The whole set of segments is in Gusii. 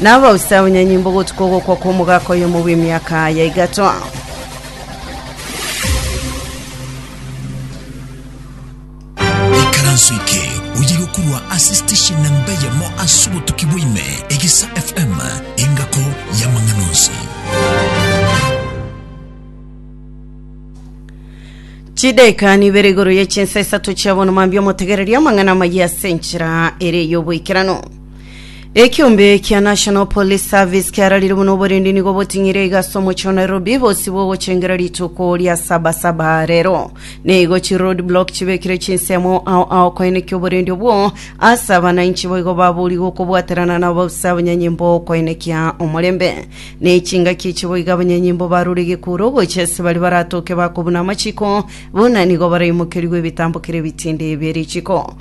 Na abausa abanyanyimbo gotuka ogokwa kw'omogaka oyomo bw'emiaka ya igato. ikaranso eke oye gokurwa ase station namba eyemo ase obotuki bwaime egesa fm engako y'amang'ana onsi Chidaika nibere igoro ye chinsa isato chia bono mambia omotegereria amang'ana amayia ase enchera ere y'oboikeranu. Ekiombe kia National Police Service kiararire buna oborendi nigo boting'ire iga ase omochie o Nairobi bosi bogochengira rituko ria sabasaba rero. Nigo chi road block chibekire chinsemo ao ao koenekia oborendi obwo ase abananchi boigo babori gokobwaterana na ababusa abanyanyimbo koenekia omorembe. Ne chingaki echi boigo abanyanyimbo barure egekuro gocha ase bari baratoke bakobuna amachiko buna nigo baraimokerigwe ebitambo kere ebitindi bie richiko.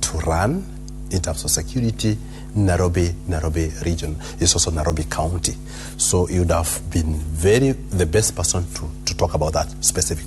to run in terms of security Nairobi, Nairobi region is also Nairobi county so you would have been very the best person to, to talk about that specific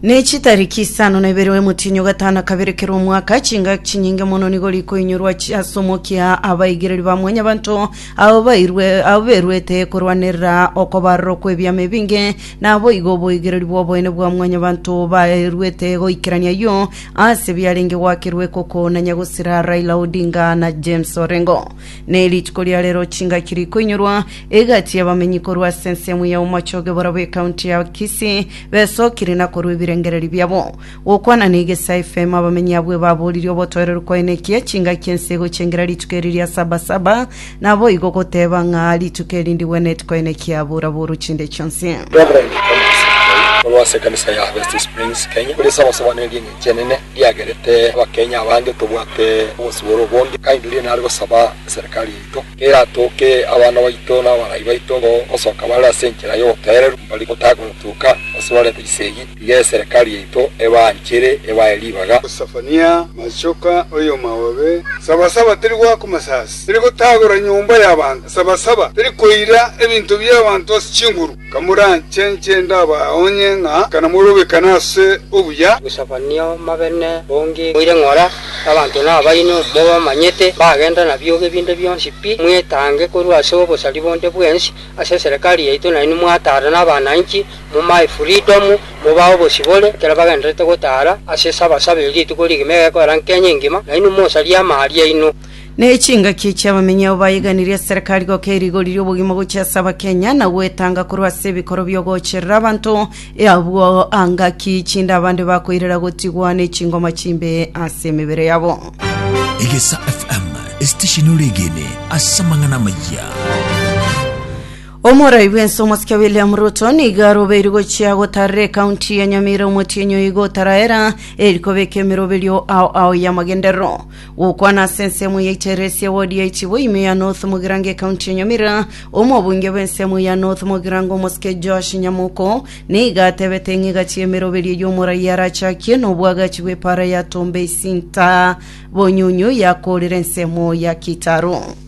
Ne chitariki isano na ibere omotienyi o gatano kabere kera omwaka, chingaki chinyinge mono nigo rikoinyorwa chi- ase omokia abaigereri ba mwanyabanto abo bairwe abo beruete korwanerera okobarorwa kw'ebiama ebinge, naboigo oboigereri bw'oboene bwa mwanyabanto baeruete goikerania ayio Ase biarenge gwakerwa ekoko na nyagosera Raila Odinga na James Orengo. Ne rituko ria rero chingaki rikoinyorwa egati y'abamenyi korwa ase ensemo ya omochoge borobwo ekaunti ya Kisii besokire na korwa ebirengereri biabo. Gokwana na Igesa FM abamenyi abwo ebaboririe obotoereru kwaene ekiya chingaki ense egochengera rituko eri ria Sabasaba Naboigo goteba ng'a rituko eri ndigwenereti koine kiabura-buru chinde chionsi. Reverend Thomas Nchoi, omorwoti ase ekanisa ya Harvest Springs, Kenya, korisia abasobanore ring'echi enene riagerete Abakenya abange tobwate obosibore obonge, akaengeria nare gosaba eserikari yaito keratooke abana baito na abarai baito gosoka bare ase enchera y'oboteereru mbari gotagotuka gose barente chisegi. Iga eserekari yaito ebaanchere, ebae ribaga. Sefania, Machoka, oyomaobe, Sabasaba teri goaka masasi, teri gotagora nyomba y'abanto, Sabasaba teri koira ebinto bi'abanto ase chinguru, Kamoranche inche ndabaonye ng'a kanamorobekane ase obuya. Sefania, Omabene bonge moire ng'ora, abanto nabaino, mobamanyete, bagenda nabiogo ebinde bionsi pi, mwetange korwa ase obosari bonde bwensi ase eserekari yaito, nainwe mwatara nabana inchi, Momae freedom, mobae obosibore, ekero bagendererete gotara ase Sabasaba erio rituko rigima egekoera nkenya engima, nainwe mosarie amaari aino. Ne chingaki echi abamenyi abo bayeganirie ase serekari goka erigori ri'obogima gochia ase abakenya na gwetanga korwa ase ebikoro bi'ogocherera abanto e abwo anga ki chinde abande bakoirera gotigwa ne chingoma chimbe ase emebere yabo. Egesa FM, esitesheni ore egene ase amang'ana amayia. Omorai bw'ense omosike William Ruto nigo arobeirwe gochia gotarera ekaunti ya Nyamira omotienyi oigo otaraera eri kobeka emeroberio ao ao y'amagenderero. Gokwana ase ensemo ya Iteresi ya wodi ya Ichibo ime ya North Mugirango ekaunti ya Nyamira, omobunge bw'ensemo ya North Mugirango omosike Joash Nyamoko nigo atebete ng'a egati y'emeroberio y'omorai arachakie n'obwagachi bw'epaara ya Tombe Isinta Bonyunyu yakoorire ensemo ya Kitaro.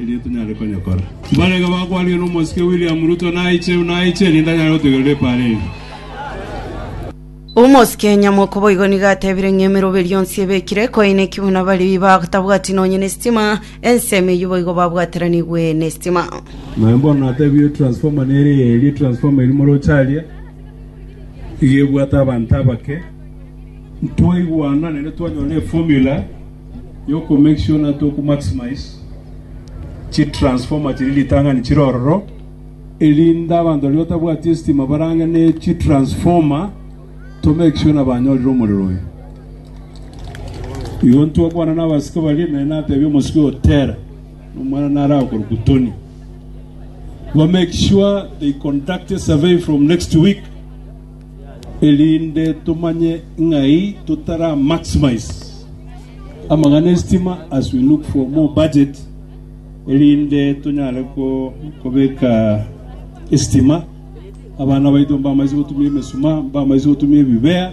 erio tonyare konyekora. Mbaraiga bakwanire nomosike William Ruto naiche, naiche, erinde anyare gotegerera epaara eria. Omosike Nyamoko boigo nigo atebire ng'a emeroberio yonsi ebekire koineki buna baria batabwati nonye nestima, ensemo eyio boigo babwateranigwe nestima. Naye bono natebie transformer nere eye eria transformer eria moroche aria iga ebwate abanto abake. Twaigwana naende twanyora eformula y'oko make sure na toku maximize chi transformer chiria ritang'ani chire ororo, erinde abanto baria batabwati estima barang'e ne chi transformer to make sure na banyorire omorero oyo. Igo ntwakwana na abasike baria ime natebia omosike oyo tera omwana narakorwa kutoni ba make sure they conduct a survey from next week Erinde tomanye ng'ai totara maximize amang'ana esitima as we look for more budget erinde tonyare kobeka esitima abana baito mbamaisi gotumia emesuma mbamaisi gotumia ebibea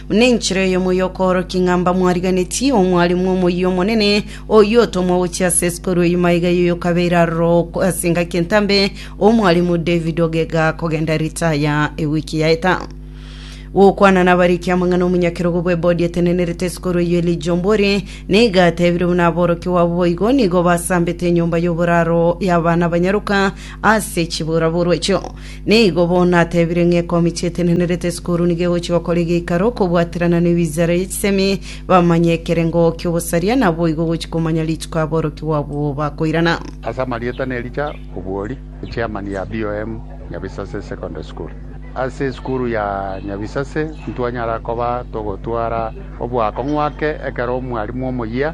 Nenchera eyomo y'okoorokia ng'a mbamwariganeti omwalimu omoyio omonene, oyio otomwa gochia ase esikuru eyio maiga y'oyokabeire aroro ase engaki entambe, omwalimu David Ogega, kogenda ritaya ewiki yaeta. Gokwana nabariki amang'ana omonyakerogo bw'ebodi etenenerete esikuru eyio Elijah Ombori, nigo atebire buna aborokigwa abwo boigo nigo basambete enyomba y'oboraro y'abana abanyaroka ase chiburaburwa echio. Nigo bono natebire ng'a ekeomi chi'etenenerete esukuru nigo egochia gokora egeikaro kobwaterana nebinchara ye chisemi, bamanye ekerengo ki'obosaria, na boigo gochia komanya rituko aborokia babo bakoirana. Ase amarieta na Elija Obwori, Chairman ya BOM Nyabisase Secondary School. Ase esukuru ya Nyabisase ntwanyara koba togotwara oboakong'u ake ekero omwalimu omoyia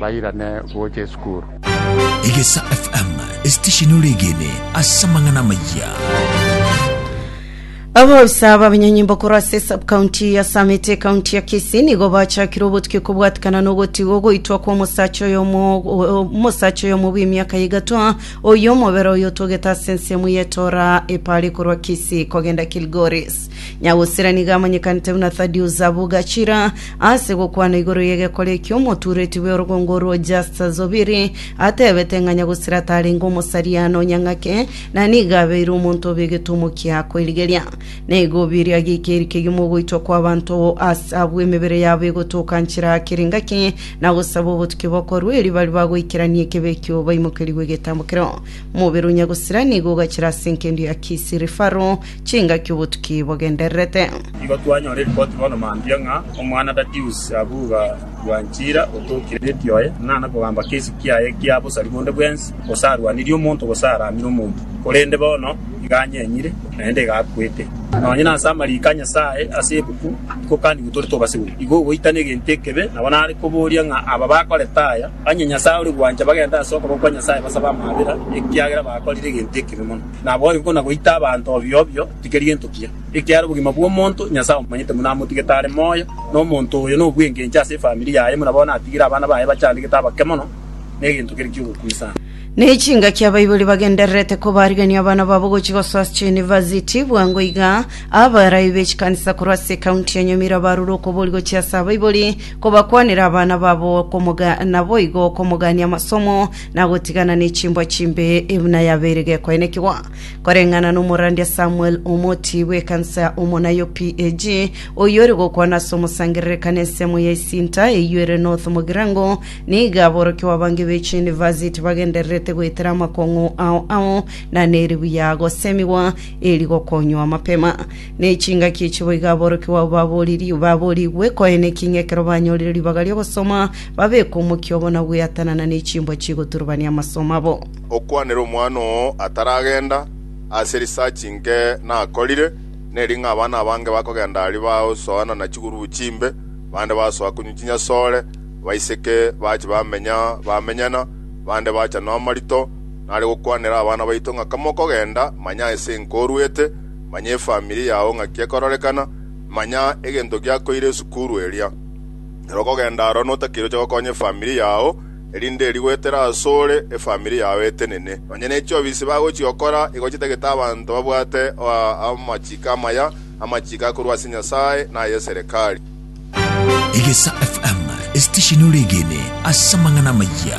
bairane gocha esukuru. Egesa FM, esitesheni ore egene ase amang'ana amayia. Abausa b'abanyanyimbo korwa ase subcounty ya Summit ekaunti ya Kisii nigo bachakire obotuki kobwatikana nogotigwa goitwa kwa omosacha oyo omo- o- omosacha oyo omo bw'emiaka igatwa oyo omobere oyo otogete ase ensemo y'etora epare korwa Kisii kogenda Kilgoris Nyagusira nigo amanyekanete buna Thaddeus Abugachira ase gokwana igoro y'egekore ekio omotuureti bw'orogongo orwo Justus Zubiri atebete ng'a Nyagusira tarenge omosaria na onyang'ake na nigo abeire omonto obe egetumo kia koirigeria. Neigo Obiri ageika eri kegima ogoitwa kw'abanto ase abwo emebere yabo egotoka nchera kera engaki na gosaba obotuki bokorwa eri bari bagoikerania ekebe ekio baimokerigwe egetambokero. Omobere o Nyagusira nigo ogachira ase enkendi ya Kisii Referral chingaki obotuki bogendererete. Igo twanyora eripoti bono mambia ng'a omwana Datius Abuga Bwanchira otookire nepi oye, ng'a nakogamba kesi kiaye ekia bosari bonde bwensi, gose arwanirie omonto gose aramire omonto, korende bono iga anyenyire, naende iga akwete. Nonye nase amariiko a Nyasae ase ebuku tikokanigwe tore tobasegwe, igo ogoitana egento ekebe nabo nare koboria ng'a aba bakorete aya, onye Nyasae ore gwancha bagende ase okoboko kwa Nyasae basabe amabera, ekiagera bakorire egento ekebe mono. Naboigo ko nagoita abanto obio obio, tikeri gento kiya, ekiara obogima bw'omonto Nyasae omomanyete buna amotigete are moyo, na omonto oyo nobwengencho ase efamiri yaye buna bono atigire abana baye bachandegete abake mono negento kere ki'ogokuna sana. Ne chingaki abaibori bagendererete kobarigania abana babo gochia gosoa ase chiyunivasiti. Bwango iga, abaraai be chikanisa korwa ase ekaunti ya Nyamira barure okobori gochia ase abaibori kobakwanera abana babo okomoga naboigo okomogania amasomo na gotigana nechimbwa chimbe ebuna yabeire gekoenekigwa koreng'ana nomorandia Samuel omoti bw'ekansa ya omona yo PAG oyore gokwana ase omosangererekane ensemo ya esinta eyio ere North Mogirango niga aborokigwa abange b'echi university bagendererete goetera amakong'u ao ao na neribuya gosemigwa eri gokonywa mapema Ne chingaki echi boigo aborokigwa abo babooriri- baboorigwe koeneki, ng'a ekero banyorire ribaga ri'ogosoma, babeke omokia obo na gweatanana ne chimbwa chigoturubania amasomo abo. Okwanere omwana oo ataragenda ase research inke nakorire, neri ng'a abana abange bakogenda aria bagosoana na chigurubu chimbe, bande basoa konywa chinyasore, baiseke bache bamenya bamenyana, bande bachanwa amarito. Nare gokwanera abana baito ng'a kamokogenda, manya ase enke oruete, manya efamiri yao ng'aki ekororekana, manya egento giakoire esukuru eria. Ere okogenda aro notakeire oche gokonya efamiri yao, erinde eria goetera asore efamiri yao etenene. Nonya ne chiofisi bagochia gokora igo chitagete abanto babwate amachiko amaya, amachiko akorwa ase Nyasae na aye serikali. Egesa FM, esitesheni ore egene ase amang'ana amayia.